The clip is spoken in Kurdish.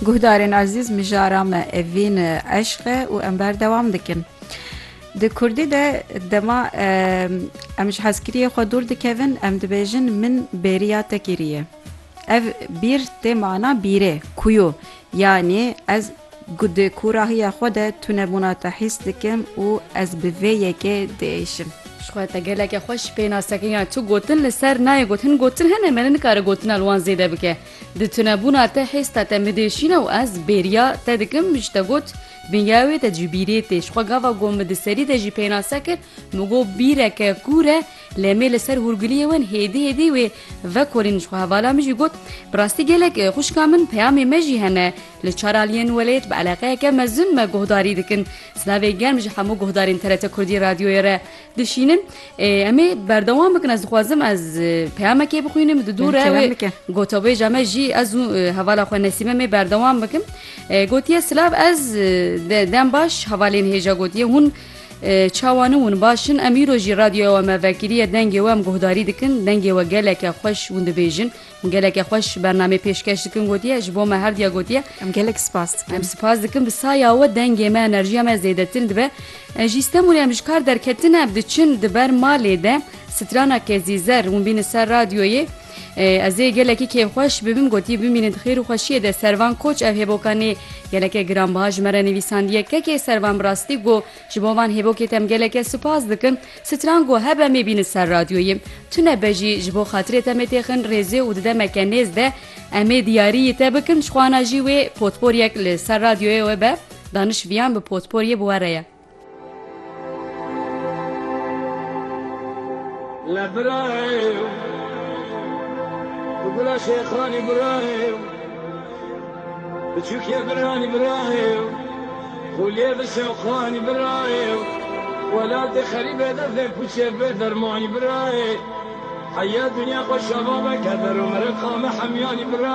Guhdarên ezîz mijara me evîn eşq e û em berdewam dikin. Di Kurdî de dema em ji hezkiriyê xwe dûr dikevin em dibêjin min bêriya te kiriye. Ev bîr tê mana bîrê, kuyo, yanî ez Ku di kûrahiya xwe de tunebûna te hîs dikim û ez bi vê yekê diêşim. Ji xwe te gelekî xweş pê nas dikim ya tu gotin li ser nayê got hin gotin hene me ne nikare gotina li wan zêde bike. Di tunebûna te hêsta te min diêşîne û ez bêriya te dikim ji te got bin ya wê te cibîrê tê. Ji xwe gava ku min di serî de jî pênase kir min got bîreke kûr e lê me li ser hûrgiliyê wen hêdî hêdî wê vekolîn ji xwe hevala min jî got bi rastî gelek xwişka min peyamê me jî hene Li Çaralî yên welêt bi eleqeyeke mezin me guhdarî dikin. Silavê germ ji hemû guhdarên TRT Kurdî Radyoyê re dişînim. Ê em ê berdewam bikin ez dixwazim ez peyamekê bixwînim di dû re wê gotabêja me jî ez û hevala xwe Nesîme mê berdewam bikim. Gotiye silav ez dem baş hevalên hêja gotiye hûn çawan ûn baş in. Em îro jî radyoya we me vekiriye dengê we em guhdarî dikin dengê we geleke xweş hûn dibêjin. Geleke xweş bernamê pêşkeş dikin gotiye ji bo me herdiya gotiye. Em gelek spas dikin. Em spas dikin bi saya we dengê me enerjiya me zêdetir dibe. Ji Stenbolê em ji kar derketine bi diçin di ber malê de strana kezî zer hûn bînin ser radyoyê. Ez ê gelekî kêfxweş bibim gotiye bimînin di xêr û xweşiyê de servan koç ev hêboka nê geleke giranbiha ji me re nivîsandiye kekê servan bi rastî got Ji bo van hêvokê te em geleke sipas dikin. Stran ku hebe em ê bînin ser radyoyê. Tune be jî ji bo xatirê te em ê têxin rêzê û di demeke nêz de em ê diyariyî te bikin ji xwana jî wê potporyek li ser radyoyê we be. Daniş viyan bi potporyê bi we re ye. La bıraev Gula Şekhani bıraev Biçûkê biranî bira ye û xûliyê bi şewqanî bira ye û welatê xerîbê destê pûçê bê dermanî bira ye. Heya dinya xwe şeva veke der û meriqa me hemyanî bira ye.